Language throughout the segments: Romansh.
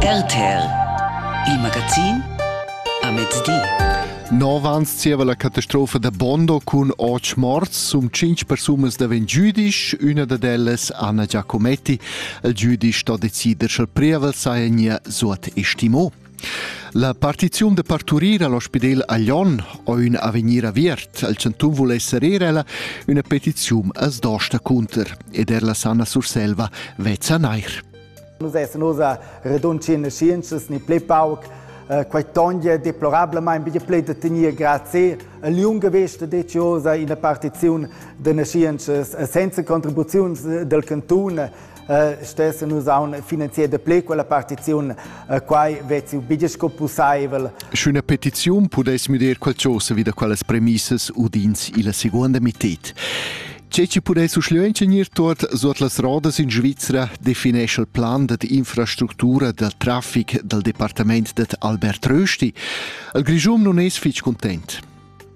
RTL Il magazin a mezdi. Nov ans zieva la catastrofa da Bondo cun otg morts, sum cinc persunas daven giudisch, üna dad ellas Anna Giacometti. Il giudisch sto decider sch'el prievel saja nia suot estimo. La partiziun da parturir all'ospidel a Lyon o ün avegnir aviert al chantun vul esser eir ella üna petiziun as dosta cunter ed er la Sanna Surselva vezza neir. Nus essan oz a redunci in scienzas ni ple pauc eh, quai toglia deplorablamain bia play da tegnir grazie a liunga vesta deziosa ina partiziun da nascienças senza contribuziuns del cantun stessan nus aun finanzier da ple quella partiziun, quai vezzi biglia sco pussaivel. Sch'üna petiziun pudess müder qualchosa vi da quellas premissas udins illa seguonda mited. Tge ci pudess uschleu ingegnir tuot sot las rodas in Svizzera definesce il plan dad infrastructura dal traffic dal departament dad Albert Rösti? Il Grischun non es fich content.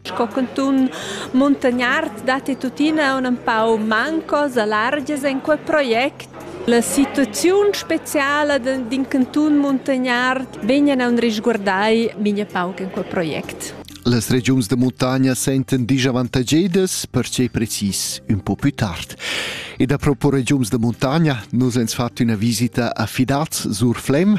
Sco cantun muntagnard datti tuttina aunc empau mancos alargias en quei project. La situaziun speciala d'in cantun muntagnard vegnan aunc risguardai mintga pauc en quei project. Las regiuns da muntagna sentan disavantagedas, pertgei precis ün po pü tard. Ed apropos regiuns da muntagna, nus ens fat üna visita a Fidaz sur Flem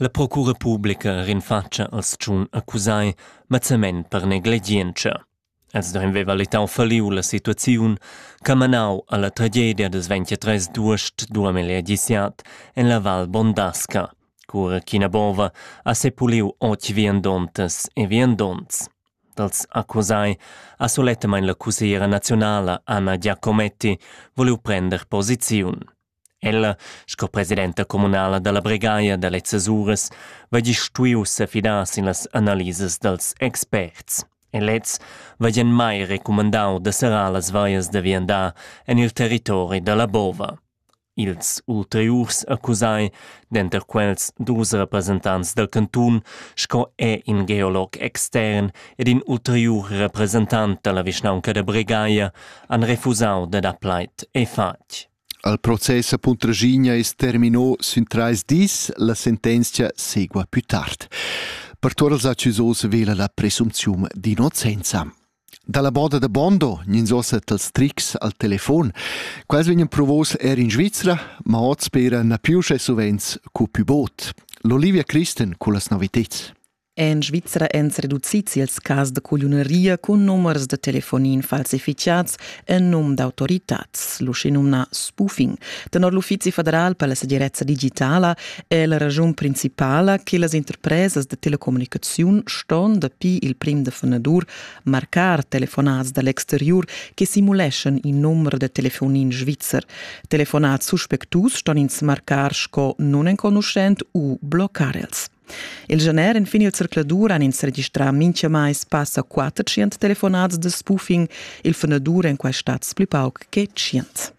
La procura publica rinfatscha als tschun accusai mazzament per negligientscha. Els duein vever letau falliu la situaziun ch'ha manau alla tragedia da 23 duest 2017 en la Val Bondasca, cura ch'ina bova ha sepuliu otg viandontas e viandonts. Dals accusai ha sulettamain la cussiera nazionala Anna Giacometti voliu prender posiziun. Ella, sco presidenta communala dalla Bregaia da lezzas uras, va gist stuiu sefidar sin las analisas dals experts. E lez va gian mai recumandau da serrar las veias da viandar en il territori dalla bova. Ils ulteriurs accusai, denter quels dus representants dal cantun, sco è in geolog extern ed in ulteriur representant dalla vischnaunca da Bregaia, han refusau da dar plaid e fatg. Al process a Puntraschigna es termino sün trais dis, la sentenzia segua pü tard. Per tuot els accusos vela la presumpziun d'innocenza. Dalla boda da Bondo gnins ossa tals trics al telefon. Quels vegnan provos er in Svizzera, ma hoz spera na più sche suvent cu pü bod. L'Olivia Christen culla noviteds. En Svizra èn reducids ils cas da cugliuneria cun numers da telefonin falsificads en num d'autoritads, l'uschenumnà spoofing. Tenor l'Uffizi federal per la segirezza digitala è la raschun principala che las interpresas da telecommunicaziun ston dapi il prim da fanadur marcar telefonats da l'exteriur che simuleschan in numero da telefonin svizzer. Telefonats suspectus ston ins marcar sco nunenconuschent u bloccar els. Il gener enfin il zercladur han ins registrà mintgamai passa 400 telefonads de spoofing, il fundadur en quai stats pli pauc che 100.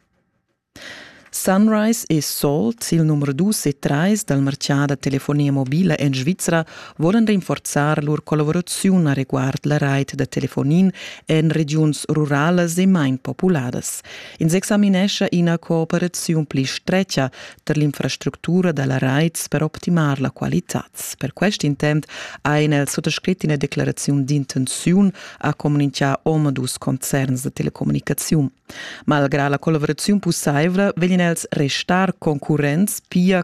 Sunrise e Salt, il numero 2 e 3 dal marchà da telefonia mobila en Svizra, volan rinforzar lur collaboraziun a reguard la rait da telefonin en regiuns ruralas e main populadas. Ins examinescha ina cooperaziun pli strecha per l'infrastructura da la raits per optimar la qualitad. Per quest intent ha in el suttascrit ina declaraziun d'intenziun a comunicar omadus concerns da telecommunicaziun. Malgrà la collaboraziun pussaivla vegin els restar concurrents pia